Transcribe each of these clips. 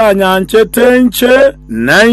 Mwanyanchete inche, na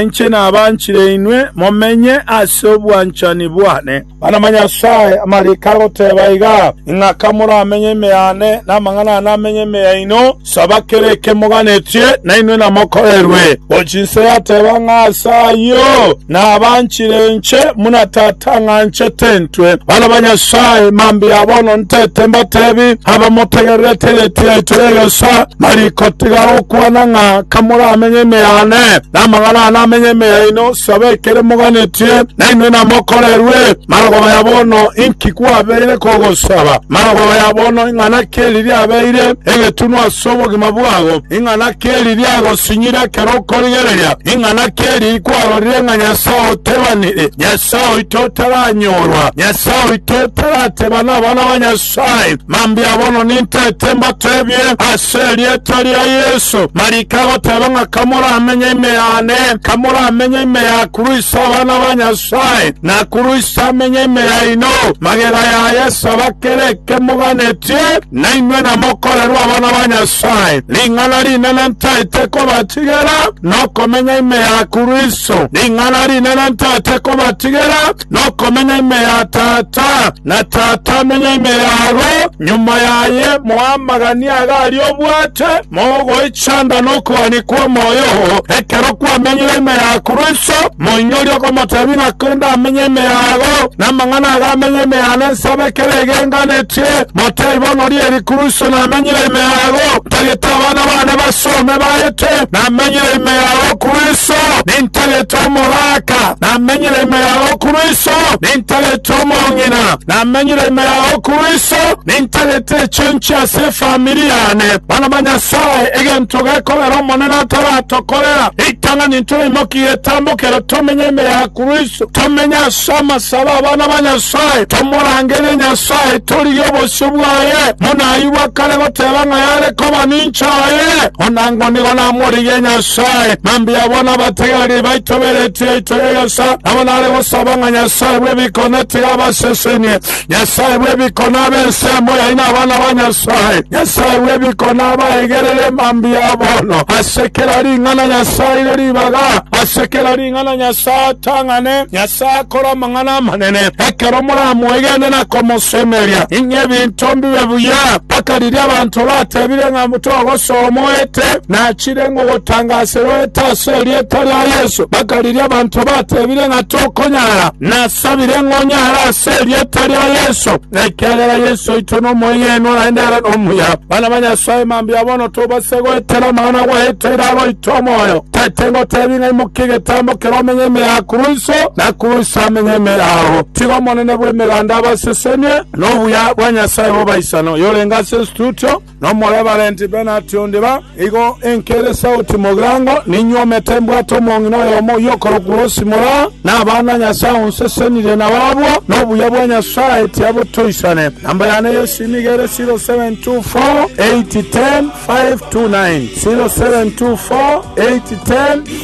inche nabanchire inwe momenye ase obwanchani bwane. Bana ba Nyasae, amariko agoteba iga, ing'aka moramenye ime yane, na amang'ana ane amenye ime yaino. Saba kera eke moganetie, nainwe namokorerwe. O chinse yateba ng'a ase ayio nabanchire inche, buna Tata ang'anchete intwe. Bana ba Nyasae, mambia bono ntete mbatebi, abamotegererete egetie yaito y'egesaa, marikotiga gokwana ng'a kamoramenye ime yane, namang'ana ane amenye ime yaino. Saba ekere moganetie, nainwe namokorerwe. Mara kobaya bono inki kwabeire kogosaba. Magoro ya bono ing'ana ki eriria abeire egetunwa ase obogima bwao? Ing'ana ki eriria agosinyire ekero okorigereria? Ing'ana ki eriria kwarorire ng'a Nyasae otebanire, Nyasae oito otaranyorwa, Nyasae oito otarateba nabana ba Nyasae, Mambia bono nintete mbatebie ase erieta ria Yeso, marika agoteba ng'a kamoramenye ime yane, kamoramenye ime ya Kristo abana ba Nyasae. Sae, nakurusie amenye ime yaino, magega ya Yeso bakere ekemoganetie, nainwe namokorerwe abana ba Nyasae. Ring'ana rinene ntaete kobatigera, nokomenya ime ya Kristo. Ring'ana rinene ntaete kobatigera, nokomenya ime ya Tata, na Tata amenye ime yabo. Nyuma yaye moamaganie aria aria obwate, mogoe Sanda nokoani kw'omoyo oo, ekero kwamenyire ime ya Kristo, moinyore okomotebia ng'a korende amenye ime yago, namang'ana ago amenye ime yane nsaba ekero egenganetie. Motebie bono oria eri Kristo namenyire ime yago, ntagete abana bane basome baete, namenyire ime yago Kristo, nintagete omogaka, namenyire ime yago Kristo, nintagete omong'ina, namenyire ime yago Kristo, nintagete echonchi ase Famiri yane, bana ba Nyasae, egento gekogera Omonene ataratokorera, ritang'ani ntoimokie getambokero, tomenye ime ya Kristo, tomenye ase amasabo 'abana ba Nyasae, tomorangerie Nyasae, torigie obosio bwaye, buna ayio bwa kare goteba ng'a yare koba ninche aye, onango nigo namorigie Nyasae. Mambia abwo nabategererie baito b'eretiro yaito y'egesaa, nabo nare gosaba ng'a Nyasae bw'ebikone tiga abasesenie. Nyasae bw'ebiko nabe ensemo yaino abana ba Nyasae. Nyasae bw'ebiko nabaegerere mambia bono ase kera ring'ana Nyasae aire ribaga, ase kera ring'ana Nyasae atang'ane, Nyasae akore amang'ana amanene. Ekero moramwegene na komosemeria, inye ebinto mbibe buya, mpaka riria abanto batebire ng'a togosoa omoete, nachire ngogotangaserwa oete ase erieta ria Yeso, mpaka riria abanto batebire ng'a tokonyara. Nasabire ng'a onyare ase erieta ria Yeso, ekiagera Yeso oito n'omoy'Enwa naye nere nomuya. Bana ba Nyasae, mambia bono tobase goetera amang'ana gwaetire agoita omoyo. Tete ngotebi ng'a imokia egetambo kere omenye ime ya Kuruso, na Kuruso amenye ime yao. Tiga Omonene bw'Emeganda abasesenie, na obuya bwa Nyasae bw'abaisani oyorenge ase ensututo, Nomorebarenti Bernard Ondiba, Igo enke ere sauti mogirango, ninywomete mbwate omong'ina oyomo oy'okorokwa Rosi Mora, na abana Nyasae onsesenirie nabo abwo, na obuya bwa Nyasae tiabotoisane. Namba yane y'esimu nigo ere 0724810529,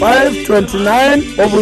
0724810529. Obuya